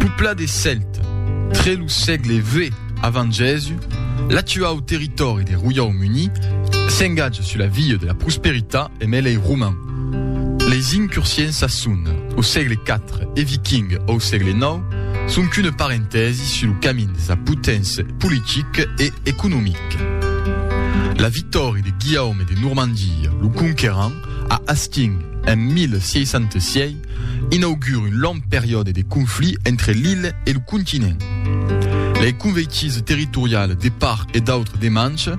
Pupla des Cèltes, tre lo sègle vi avant Jèsus, l'actuau territòri de Roiaumuni s'engatja sus la via de la prosperitat emb lei Romans. Leis incursions a son au sègle iv e Viking au sègle ix son qu'una parentèsi sus lo camin de sa poténcia politic e economic. La victòria de Guillaume de Normandia lo Conquerant a Hastings en 1066, inaugure un long periòde de conflit entre l'illa e lo continent. Lei conveitís territorial de part e d'autre de Manche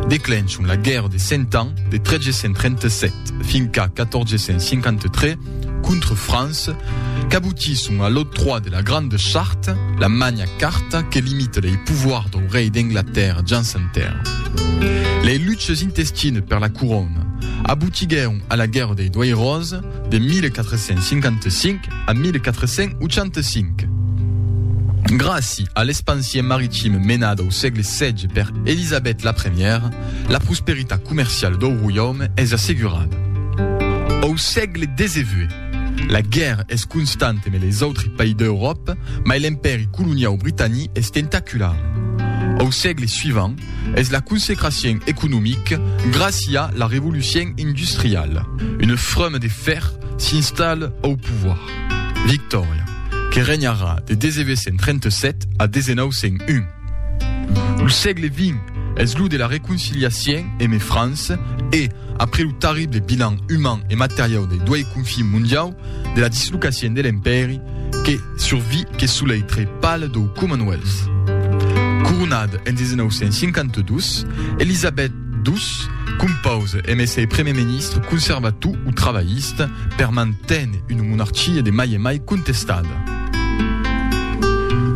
declenchon la Guèrra de Cent Ans de 1337 fin qu'a 1453 contra França qu'abotisson a l'octroi de la Grande Charte, la Magna Carta que limita lei pouvoirs dau rei d'Anglatèrra Jans Anter. Lei luches intestines per la corona abotiguèron a la Guèrra dei Doiròs, de 1455 a 1485. Gràci a l'espansion maritime menada au sègle xvi per Elisabèth la Premiera, la prosperitat comerciala dau roiaume es assegurada. Au sègle xix, la guèrra es constanta emb les autres país d'Euròpa, mai l'empèri coloniau britanic es tentacular. Au sègle suivant, Es la consecracien economic gràcia la revolucien industriala. Una frama de fèr s'installa au pouvoir. Victòria, que renharà de 1937 a 1901. Lo sègle vint es lo de la reconciliacien eme França e, après lo tarrible bilan uman e materiau dei doei confins mondiau, de la dislocacion de l'Empèri que survi que sous l'aitre pal dau Commonwealth. Coronada en 1952, Elizabeth ii compause emé ser primièr ministre conservator o trabalhista per manténer una monarquia de mai en mai contestada.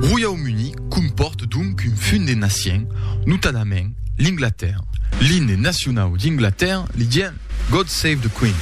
Royaume Uni compòrt donc un fum de nacion, notadament l'Inglatèrra. L'imne nacionau d'Inglatèrra li dien God Save the Queen.